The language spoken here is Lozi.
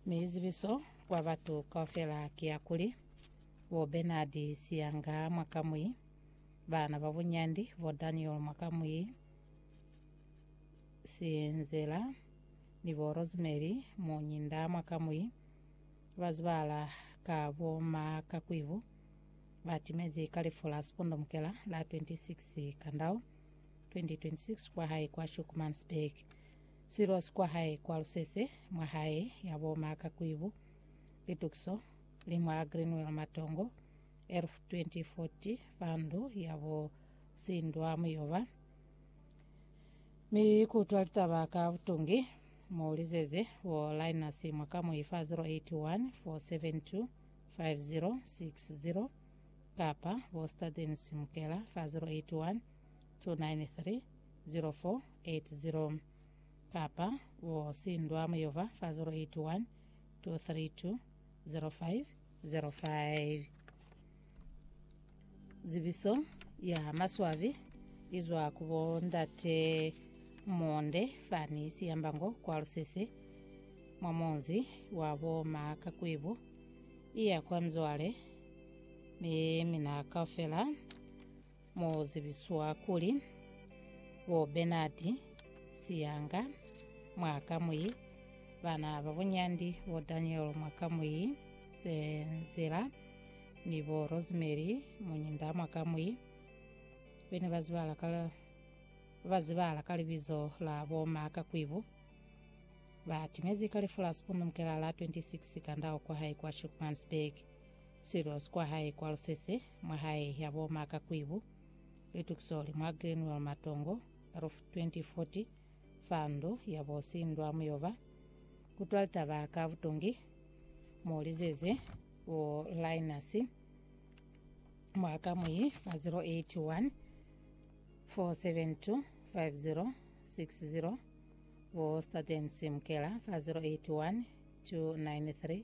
Mi zibiso kwa batu kaufela ki ya kuli, bo Bernard Siyanga mwakamwi, baana ba bunyandi bo Daniel mwakamwi Sinzela ni bo Rosemary Munyinda mwakamwi, ba zibahala ka bo Ma Kakwibu, ba timezi ka lifu la sipondomukela la 26 Kandau 2026 kwa hae kwa Schoeckmansburg. Silosi kwa hae kwa lusese mwa hae ya bo Maka Kwibu, Litukiso, li mwa Greenwell Matongo, Elf 2040, fa ndu ya bo Sindwa Muyoba. Mi kutwa litaba ka butungi, mu lizeze bo Linus Mwakamwi fa 081 472 5060 kapa bo Stadens Mukela fa 081 293 0480 kapa u sindwa muyova fa 081 232 0505. Zibiso ya maswabi izwa ku bo Ndate Monde fani Siyambango kwa Lusese mwa munzi wa bo Makakwibu iya kwa Mzwale mi mina kaufela Mo zibiswa kuli, Bo Bernard Siyanga, mwa ka mwi bana ba bunyandi bo Daniel mwa ka mwi Senzela ni bo Rosemary Munyinda mwa ka mwi, bene ba zibala ka ba zibala ka libizo la bo Ma Kakwibu, ba timezi ka lifu la Sibundu Mkelala 26 Kandau kwa hae kwa Schoeckmansburg. Silos kwa hae kwa Lusese, mwa hae ya bo Maka Kwibu, Lituksoli mwa Glenwell Matongo, Ruf 2040, fa ndu ya bo Sindwa Muyoba, kutwa litaba ka butungi, mo lizeze bo Linus mwa kamuyi fa 081 4725060 bo Staten Simkela fa 081 293